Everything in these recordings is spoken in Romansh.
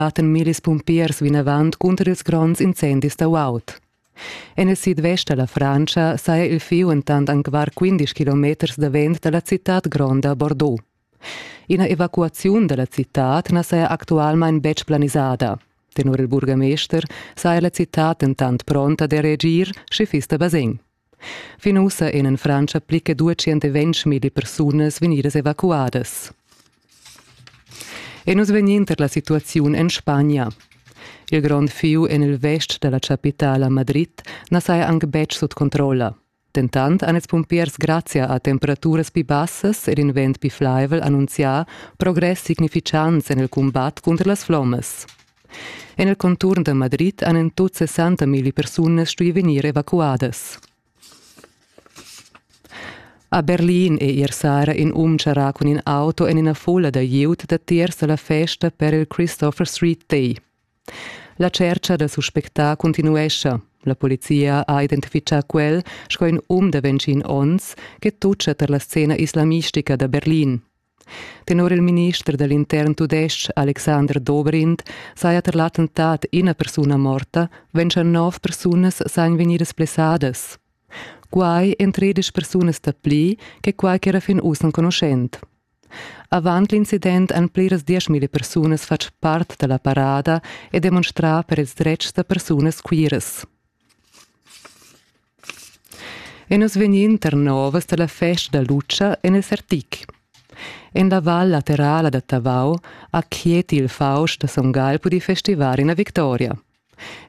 batten mir ils pumpiers vinavant cunter ils gronds incendis da Waut. En il sidvest da la Francia saja il fieu entant anc var 15 kilometers davent da la citad gronda Bordeaux. Ina evacuaziun da la citad na saja actualmain betg planisada. Tenor il burgamester saja la citad entant pronta da reagir, sche fiss da basegn. Fin ussa ein en Frantscha pli che 220 milli persunas vegnidas evacuadas. E nus vegnin tar la situaziun en Spagna. Il grond fiu en il vest dalla chapitala Madrid na saja anc betg sut controlla. Dentant han ils pumpiers grazia a temperaturas pli bassas ed in vent pli flaivel annunzià progress significants en il cumbat cunter las flommas. En il conturn da Madrid han en tut 60 milli persunas stuì vegnir evacuadas. A Berlin è ier sera in um charrà cun in auto en ina fulla da glieud datiers da la festa per il Christopher Street Day. La tschercha da suspectà continuescha. La polizia ha identifitgà quel sco in um da 21 onns che tutgia tar la scena islamistica da Berlin. Tenor il minister da l'intern tudestg Alexander Dobrindt saja tar l'attentat ina persuna morta, wenn schon nov persunas sajan vegnidas blessadas. Quai èn tredisch persunas dapli che quai ch'era fin uss enconuschent. Avant l'incident han pliras dieschmila persunas fatg part da la parada e demonstrà per ils dretgs da persunas queeras. E nus vegnin tar novas dalla festa da Lutscha en il Sertic. En la val laterala da Tavau ha Chieti il Faust da Son Gall pudì festivar ina victoria.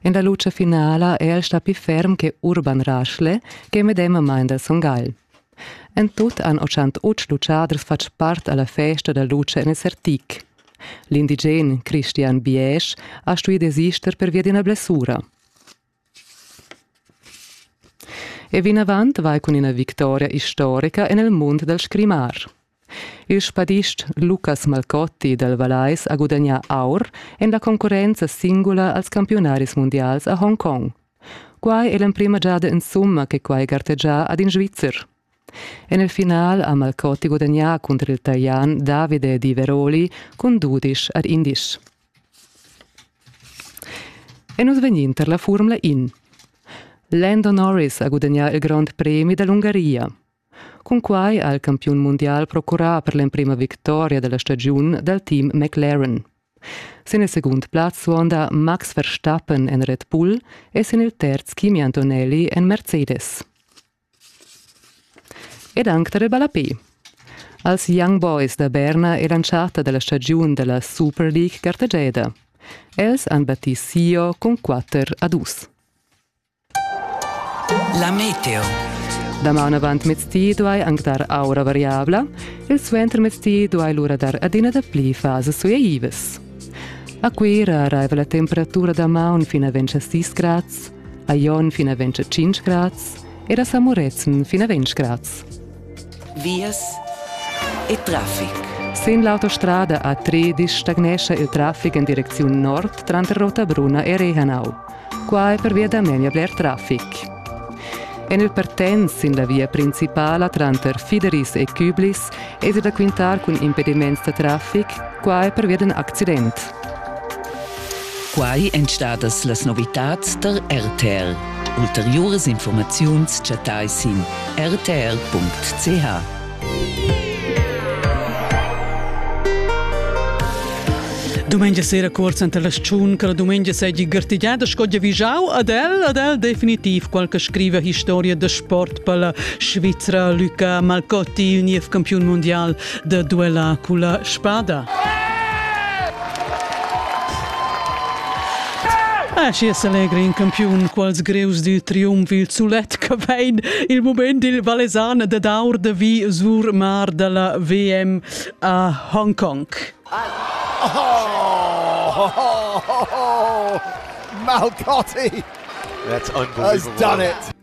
En la lutscha finala è el stà pli ferm che Urban Raschle che medemamain da Son Gall. En tut han 88 lutschaders fatg part alla festa da lutscha en il Sertic. L'indigen Christian Biesch ha stuì desister pervia d'ina blessura. E vinavant vai cun ina victoria istorica en il mund dal scrimar. Il spadist Lucas Malcotti dal Vallais ha gudagnà aur en la concurrenza singula als campiunaris mundials a Hongkong. Quai è l'emprima giada insumma che quai gartegia ad in Svizzer. En il final ha Malcotti gudagnà cunter il Talian Davide Di Veroli cun dudisch ad indisch. E nus vegnin tar la furmla in. Lando Norris ha gudagnà il grond premi da l'Ungaria. Cunquai ha il campiun mundial procurà per l'emprima victoria della stagiun dal team McLaren. Sin il segund plaz suonda Max Verstappen en Red Bull e sin il terz Kimi Antonelli en Mercedes. Ed anc tar il ballapè. Als Young Boys da Berna eran charta da la stagiun da la Super League gartegiada. Els han battì Sio cun quatter a dus. La meteo. Damaun avant mezdi duai anc dar aura variabla, il suentermezdi duai lura dar adina dapli fasas suaivas. A Cuira arriva la temperatura damaun fin a 26 grads, a Jon fin a 25 grads ed a Samurezen fin a 20 grads. Vias e traffic. Sin l'autostrada A3 stagnescha il traffic en direcziun nord tranter Rotabruna e Rehanau. Qua è pervia da memia bler traffic. En il Pertens sin la via principala tranter Fideris e Küblis è da quintar cun impediments da traffic, qua è pervia d'un accident. Quai èn stadas las novitads tar RTR. Ulteriuras informaziuns chattai sin rtr.ch. Dumengia sera cursa enta la stagiun che la dumengia seigi gartegiada sco giavischau ad el, ad el definitiv qualche scriva historia da sport per la Svizzera Luca Malcotti, il niev campiun mondial da duella culla spada. Ah, schi es allegri in campiun, quals greus du triumf il sulet che vein il moment il Vallesan da daur de vi sur mar della VM a Hong Kong. Oh, Malcotti! That's unbelievable. Has done it.